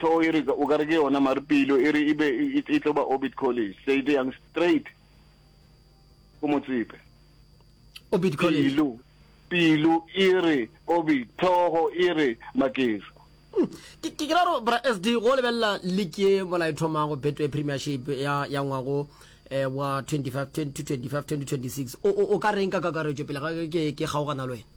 Hlogo e re, o ka re ke yona, mare pelo e re e be e, e tlo ba Orbit College. Se e yang straight ko Motsepe. Orbit College. Pelo, pelo e re Orbit, tlhogo e re Makeso. Hmm. ke ke ra ro bra sd go lebelela league ye mola e thomago betway premiership ya ya ngwago eh, wa 2015 2026 o ka reng ka kakaretšo pele ga ke ke kgaogana le wena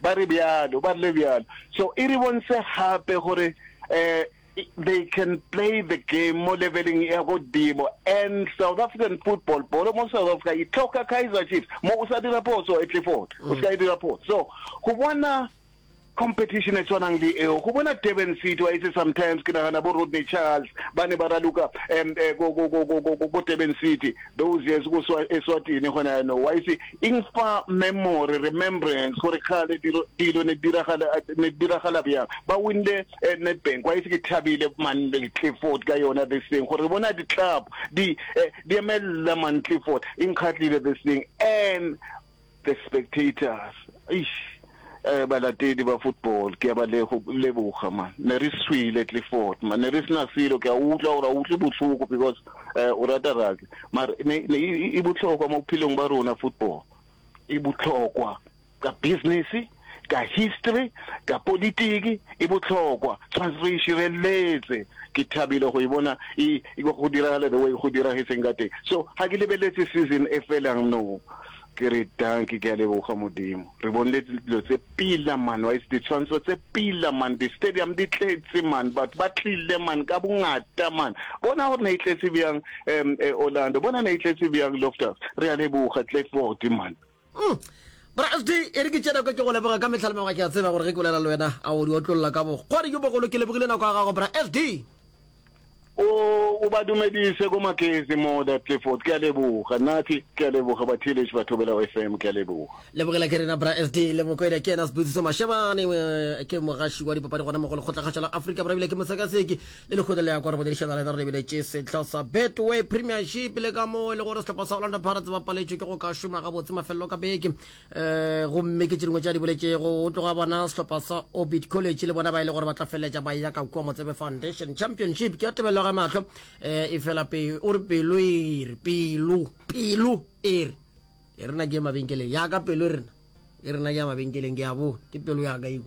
Ba re bjalo, ba rile bjalo. So e re bontse gape gore um they can play the game mo leveleng ya godimo and South African football, bolo mo South Africa e tlhoka Kaizer Chiefs. Mo o sa dira phoso e tle fort, o ska e dira phoso. So go bona competition e tshwanang le eo go bona Durban City wa itse sometimes ke nagana bo Rodney Charles ba ne ba raloka um ko Durban City Those years go swa Eswatini gona yaanong wa itse eng fa memory remembrance gore kgale dilo dilo ne diragala ne diragala bjang ba winle eh, Nedbank wa itse ke thabile Mandley Clifford ka yona this thing gore bona di club di eh, di emelela Mandley Clifford inkgatlile this thing and The Spectators, eish eh balatedi ba football ke a ba leboga man, ne re swile Clifford man, ne re sena selo, ke a utlwa gore a utlwe bohloko because eh o rata rugby, mara ne e bohlokwa mo bophelong ba rona football e bohlokwa ka business. ka history, ka politiki e bohlokwa. Tshwantse re e šireletse. Ke thabile go e bona e go diragala the way go diragetseng ka teng. So ga ke lebeletse season e felang no. Ke re dankie, ke a leboga Modimo. Re bonile dilo tse pila man, wa itse ditshwantsho tse pila man, di stadium di tletse man, batho ba tlile man ka bongata man. Bona gore ne e tletse bjang um Orlando, bona ne e tletse bjang Loftus. Re a leboga Klerkford man. Mm. Bra FD, e re ke tšena kwa ke go leboga ka mehla le mengwaga ke a tseba gore ge ke bolela le wena a o di otlolola ka bokgwadi jo bogolo ke lebogile nako ya gago bra FD. O, o ba dumedise ko Makezi mo the Clifford. Ke a leboga. Nathi, ke a leboga Batheeletši ba Thobela FM, ke a leboga. Lebogela ke rena bra FD le Mokwena ke yena Sebusiso Mashebane eh, ke mogaši wa dipapadi gona mo go lekgotlakgašo la Afrika Borwa ebile ke mosekaseki le lekgotla le ya kwa re boledišana le re lebeletše sehla sa betway premiership le ka moo e le gore sehlopha sa orlando pirates ba paletšwe ke go ka šoma gabotse mafelelo ka beke um eh, gomme ke tše dingwe tša di boletšego o tloga bona sehlopha sa orbit college le bona ba e le gore ba tla feleletša ba ya ka kua motsebe foundation championship ke ya tebelo ga matlho um e fela o re pelo e re pelo pelo e re e rena ke ya mabenkeleng yaka pelo e rena e rena ke ya mabenkeleng ke ya bo ke pelo yaka eo